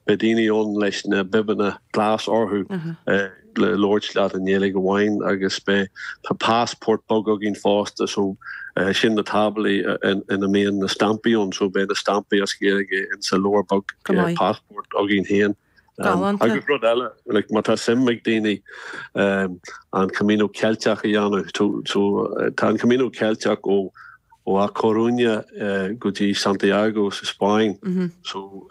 Beidh daoine ann leis na bibeanna glasa orthu le labhairt leat i nGaeilge amháin agus beidh tá passport beag againn fosta so sin na táblaí ina mbíonn na stampaí ann so beidh na stampaí as Gaeilge insa leabhar beag passport againn féin. Galánta. Agus rud eile, like má tá suim ag daoine an Camino Ceilteach a dhéanamh so tá an Camino Ceilteach ó ó A Coruña go dtí Santiago sa Spáinn so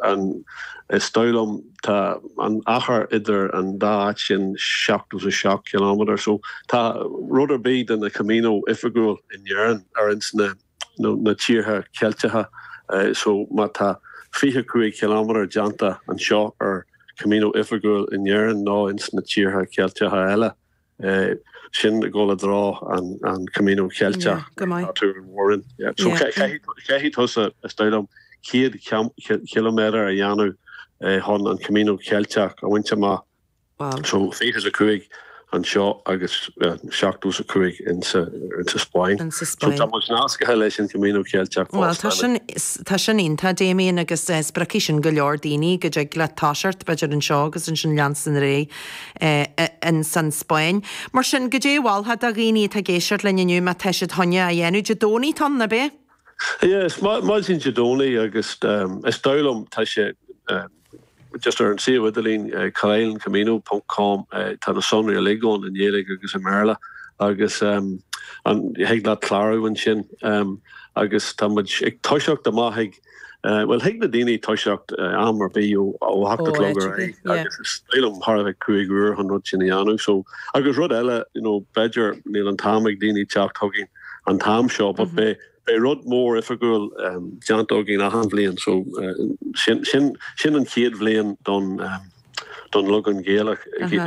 is dóigh liom tá an achar idir an dá áit sin 77 ciliméadar so tá rud ar bith de na Camino oifigiúil in Éirinn ar ins na nó na tíortha Ceilteacha so má tá 25 ciliméadar déanta anseo ar Camino oifigiúil in Éirinn nó ins na tíortha Ceilteacha eile. Sin i gcomhla drá an Camino Ceilteach atá tú in Mhúrn. So caithfidh tusa, is dóigh liom, 100 km a dhéanamh chun an Camino Ceilteach a bhaint amach. So 25 anseo agus 75 insa Spáinn. So tá muid nasctha leis an Camino Ceilteach fosta. Tá sin iontach, Damien, agus spriocfaidh sin go leor daoine go dtig leat toiseacht, b'fhéidir, anseo agus ansin leanstan ar. ins an Spáinn. Mar sin, goidé a mholfá do dhaoine atá ag éisteacht linn inniu má tá siad chun é a dhéanamh? Dé Domhnaigh atá ann, nach ea? Yeah, is maidin Dé Domhnaigh agus is dóigh liom tá sé just ar an suíomh idirlín carlencamino ponc com tá na sonraí uilig ann i nGaeilge agus i mBéarla agus thig leat clárú ansin agus tá muid ag toiseacht amach ag Bhuel, thig le daoine toiseacht am ar bith ó a hocht a chlog ar aghaidh agus is dóigh liom thart ar cúig uair chun rud sin a dhéanamh. So, agus rud eile, you know, b'fhéidir níl an t-am ag daoine teacht chugainn an t-am seo, but beidh beidh rud mór oifigiúil déanta againn achan bhliain. So, sin sin sin an chéad bhliain don, don leagan Gaelach,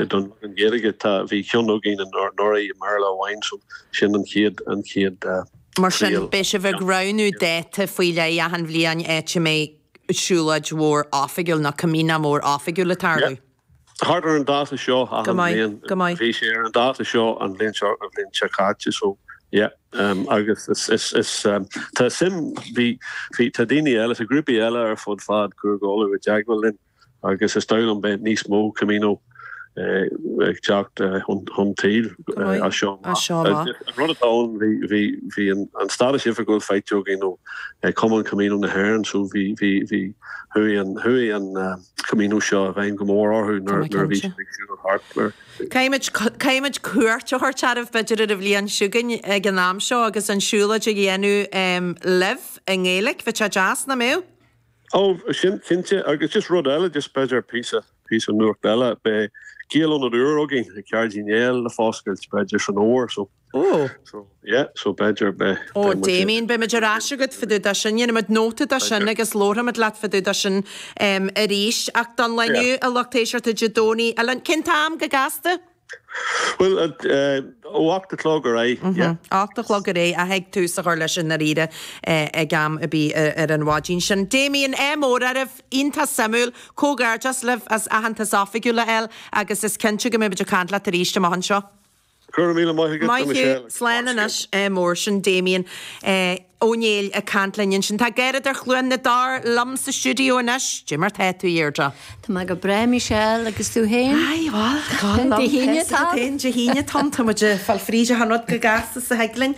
don leagan Gaeilge, tá, bhí ceann againn anuraidh i mBéarla amháin, so sin an chéad, an chéad triail. Mar sin, beidh sibh ag roghnú dáta faoi leith achan bhliain áit a mbeidh siúlóid mhór oifigiúil nó Camino mór oifigiúil ag tarlú. Yep. Thart ar an dáta seo achan bhliain. Go maith. Bhí sé ar an dáta seo an bhliain seo, an bhliain seo caite, so yeah. Agus is, is, tá suim, bhí, bhí, tá daoine eile, tá grúpaí eile ar fud fad Chúige Uladh i dteagmháil linn. agus is dóigh liom beidh níos mó Camino ag teacht chun tsaoil as seo amach. An rud atá ann, bhí an stádas oifigiúil faighte againn ó Chumann Camino na hÉireann, so bhí chuaigh an Camino seo i bhfeidhm go mór orthu nuair a bhí siad ag siúl thart mar. Caithfimid cuairt a thabhairt oraibh b'fhéidir ar an bhliain seo chugainn ag an am seo agus an siúlóid a dhéanamh libh i nGaeilic, bheadh sé deas, nach mbeadh? Ó, sin cinnte, agus just rud eile, just b'fhéidir píosa, píosa nuacht eile, beidh Gaeláras an Iúir againn ag Ceardlann Uí Néill le foscailt, b'fhéidir san Fhómhar, so. Ó. So, yeah, so b'fhéidir beidh, beidh muid. Ó, Damien, beidh muid ar ais agat fá dtaobh de sin, déanfaimid nóta de sin agus labharfaimid leat fá dtaobh de sin arís. Ach don lá inniu, a lucht éisteachta, Dé Domhnaigh, a Cén t-am go gasta? Bhuel, ó ocht a chlog ar aghaidh, yeah. Ocht a chlog ar aghaidh, ach thig tús a chur leis i ndáiríre ag am ar bith ar an mhaidin sin. Damien, eh, mór-áireamh iontach suimiúil, comhghairdeas libh as aitheantas oifigiúil a fháil agus is cinnte go mbeimid ag caint leat arís amach anseo. Go raibh míle maith agat a Michelle. Maith thú, slán anois, eh, mar sin Damien, eh. Ó Néill ag caint linn ansin. Tá Deirdre Learmont, dar liom, sa stiúideo anois. Cad é mar tá tú, a Dheirdre? Tá mé go breá, Michelle, agus tú féin? Aye, bhuel, tá liom. Dé hAoine atá ann. Dé hAoine atá ann. Tá muid ag fáil fríd achan rud chomh gasta is a thig linn.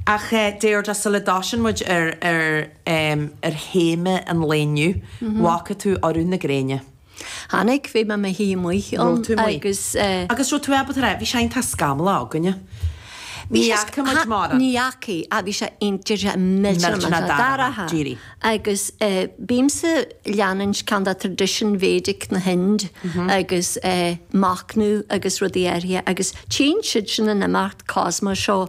Ach, a Dheirdre, sula dtoisíonn muid ar théama an lae inniu, bhfaca tú urú na gréine. Chonaic, bhí mé mo shuí amuigh ann agus. Agus raibh tú ábalta rá, bhí sé iontach scamallach againne. Ní fhaca muid mórán. Ní fhaca, ach bhí sé iontach, bhí sé millteanach dorcha. Agus bímse ag leanúint ceann de tradition Vedic na hInde agus machnamh agus rudaí áirithe agus téann siad sin in imeacht cosmos seo.